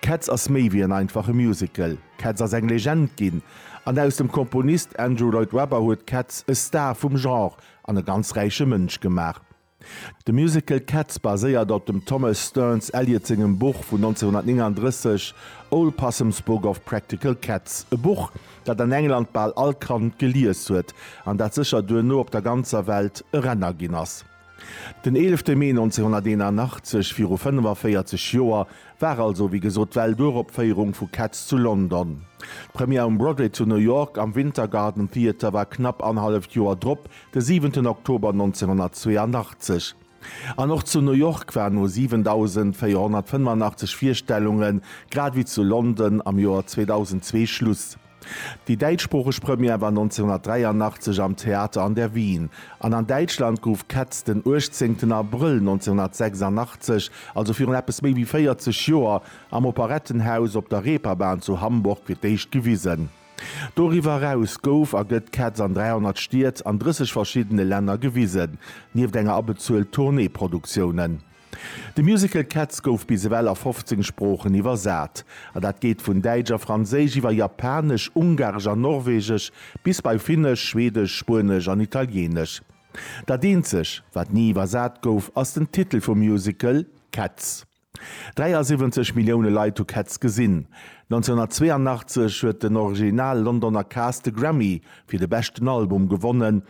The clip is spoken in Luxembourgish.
Cats ass méi wéi en einfache Musical. Cats ass eng Legend ginn, an aus dem Komponist Andrew Lloyd Webber huet Cats e Star vum Genre an e ganz räiche Mënsch gemaach. De Musical Cats baséiert op dem Thomas Stearns Eliot sengem Buch vun 1939 Old Possum's Book of Practical Cats, e Buch, dat an England bal all Kand gelies huet, an dat sécher duerno op der ganzer Welt e Renner ginn ass. Den 11 Mee 1981, viru 45 Joer, war also wéi gesot d'Welturopféierung vu Cats zu London. D'Première um Broadway zu New York am Winter Garden Theatre war knapp anhalleft Joer drop, de 7 Oktober 1982. An och zu New York war no 7.485 Virstellunge grad wéi zu London am Joer 2002 Schluss. Déi däitschsproocheg Première war 1983 am Theater an der Wien, an an Däitschland gouf Cats den 18 Abrëll 1986, also virun eppes méi wéi 40 Joer, am Operettenhaus op der Reeperbahn zu Hamburg fir d'éischt gewisen. Doriwwer eraus gouf a gëtt Cats an 300 Stied an 30 verschiddene Länner gewisen, nieft enger abezuelt Tourneeproduktiounen. De Musical Cats gouf bis ewell a 15 Sproochen iwwersat, a dat geet vun Däitsch a Franséisch iwwer Japanesch, Ungaresch a Norwegesch bis bei Finnesch, Schwedesch, Spuenesch an Italieenesch. Dat eenzeg, wat ni iwwersat gouf, ass den Titel vum Musical, Cats. 73 Millioune Leit hu Cats gesinn. 1982 huet den original Londoner Cast de Grammy fir de beschten Album gewonnen,